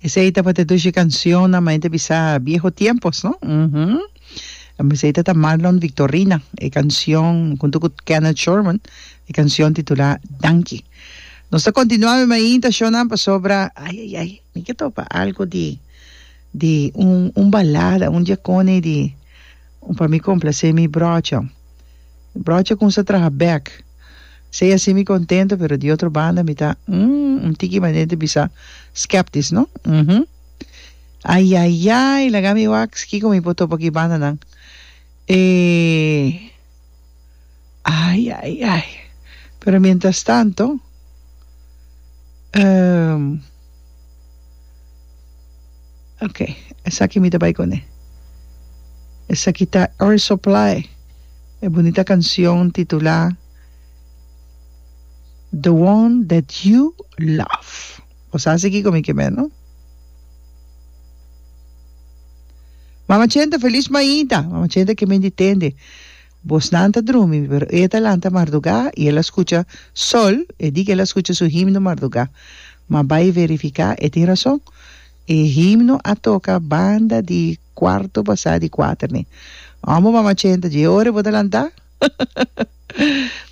Esei tabata dos dje cancionnan ma hende bisa bieho tiempos, no? Uhumm. Esei ta ta Marlon Victorina e cancion hunto cu Kenneth Sherman e cancion titulá Danki. Nos ta continua mi mainta shownan pasobra ai ai ai mi ke topa algo di di un un balada un djecone di un pa mi complacé mi brocho. Brocha con sa traha bek. Sei así mi contento pero di otro banda mi ta umm un tiki manera di bisa skeptisch no uhmm ayayay laga mi wax kico mi por topa cu e bandanan e ayayay pero mientras tanto. Ok, esaki mi ta bai con e. Esaki ta Air Supply, e bunita cancion titula The one that you love. Bo sa asi kico mi ke me, no? Mama Chenta, feliz maida! Mama Chenta ke men di tende. Bosnan ta drumi, pero e ta lanta mardugá i el a skucha sol, e di ku el a skucha su himno mardugá. Ma bai verifiká, e tin rason. E himno a toka banda di kuarto pasá di kuater ne. Amo mama chenta, dje ora e bo ta lantá?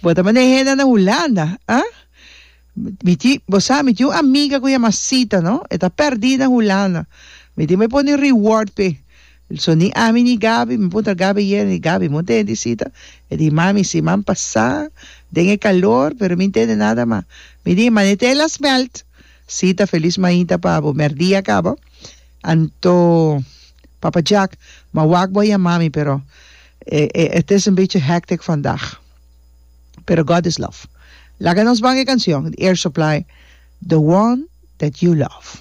Bo ta manda e hende anda Hulanda, ah? Mi tin, bo sa, mi tin un amiga ku yama Sita, no? E ta pèrdí na Hulanda. Mi tin bo e pone reward p'e. So ni ami ni Gabi, mi puntra Gabi ayera, di Gabi, bo ntende di Sita? E di mami, si, mami pasá den e kalor, pero mi ntende nada mas. Mi di, mane t'e las mèlt. Sita felis mainta pa bo, mèrdí a kaba. Anto, Papa Jack, ma wak bo a yamami, pero e, e, e, het is een beetje hectic vandaag. pero God is love. Laga nos banga e canción di Air Supply The One That You Love.